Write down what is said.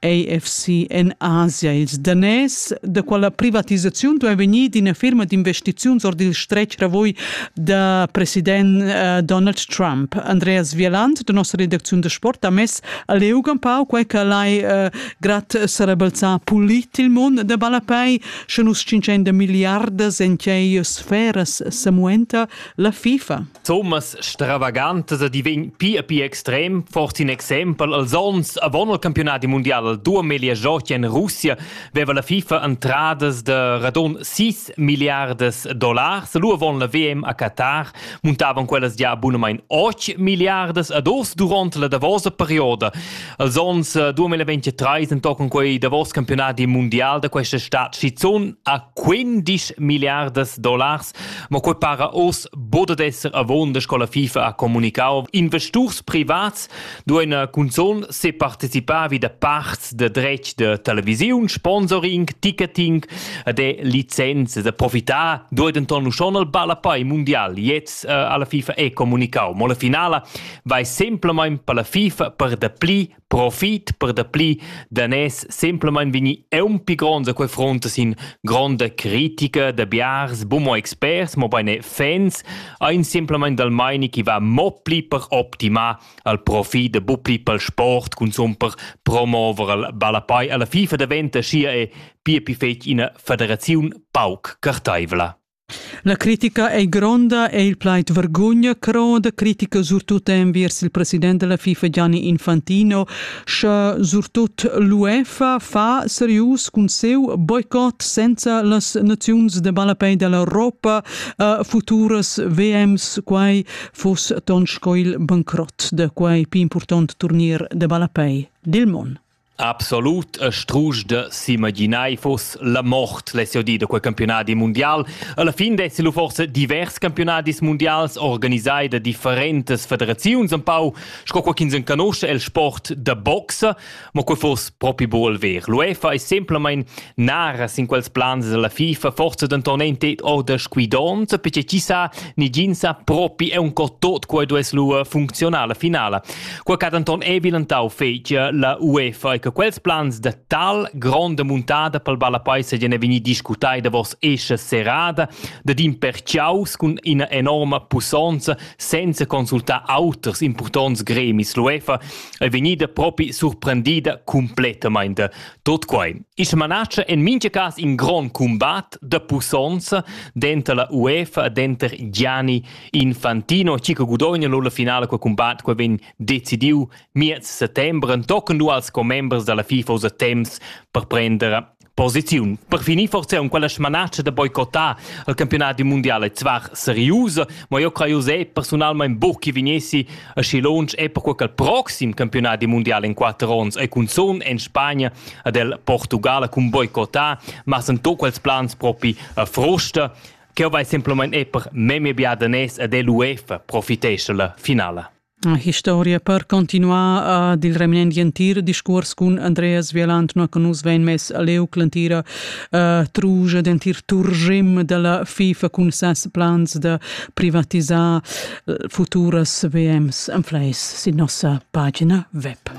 AFC en Asia. Ils daners da quella privatisaziun duai vegnir d'ina firma d'investiziuns ord il stretg ravoi da president uh, Donald Trump. Andreas Wieland, da nossa redacziun da sport, ha mess a leuga un pau quai che l'hai uh, grat sarebalzà pulit il mund da balapei, sche nus 500 miliardas en tgei sferas samuenta la FIFA. Thomas Stravagantes di vegn pia pia extrem, fort in exempel als onns avon il campionati mundial al duameglia giochi en Russia veva la FIFA entradas de radon 6 milliardas dollars. Lu avon la VM a Qatar muntavan quellas gia abunamain 8 milliardas ad os duront la davosa perioda. Als onns 2023 entochen quei davos campionati mundial da questa stat schizun a 15 milliardas dollars Ma quei para oz bod ad esser avonda sco la FIFA ha communicau. Investurs privats duein cunzun separticipar vi da parts de dretg de televisiun, sponsoring, ticketing de licenze da profitar duei denton uschon al ballapei mundial. Jetzt äh, alla FIFA e communicau. Mo la finala vai semplamain per la FIFA per dapli profit per dapli danès semplamein vegni eunpi gronds a quei front sin gronda critica da biars bumo experts, mo bein fans, ein semplamein dal meini chi va mo pli per optimar al profit da bupli pel sport consum per promover al ballapei alla FIFA daventa scia e pia pi fetg ina federaziun pauc carteivla. La critica ei gronda e il plaid vergogna croda critica surtut enviers il president della FIFA Gianni Infantino, sche surtut l'UEFA fa serius cun seu boicot senza las naziuns de ballapei dell'Europa uh, futuras VMs quai fos ton sco il bancrot de quei più important turnier de ballapei dil mon. Absolut e strusch da s'imaginar fuss la mort less jau dir da quei campiunadi mundial. Alla fin dessi lu forse divers campiunadis mundials organisai da differentas federaziuns empau, sco quei ch'ins enconosce el sport da boxa, mo quei fuss propi buol ver. L'UEFA è semplamein naras in quels plans dalla FIFA, forse denton ein tet orda squidonts, perché chi sa, ni gin sa propi è un tot quei duess lu funzionar la finala. Qua ch'ha denton ei bilentau fetgia la UEFA e che quels plans da tal gronda muntada pel ballapai seigien vegnir discutai davos escha serrada dad in perciaus cun ina enorma pussonza senza consultar auters impurtonts gremis. L'UEFA è vegnida propi surprendida completamente. Tot quai. Ische manace en mincha cas in grond combat de pussonza denter la UEFA e denter Gianni Infantino chi che gudogna lura la finala quel combat quel vegn decidiu miez settembre tochen du als commembers dalla FIFA usa temps per prender posiziun. Per finir forse un quella smanatscha da boicottare il campionato mondiale zwar seriusa, ma io creo se personalmente buc che vegnessi a schi launch e per quel proxim campionato mondiale in quattro ons e cun son en Spagna ad el Portugale cun boicottare, ma sen to quels plans propi a frusta Ch'eu vai simplamaing e per memia bia daners ed l'UEFA profitescha la finala. Historia per continuar ad il reminent entir discuors cun Andreas Vieland no che nus vein mess a leu l'entira uh, truja d'entir turgim della FIFA cun ses plans da privatisar futuras VMs en fleis sin nossa pagina web.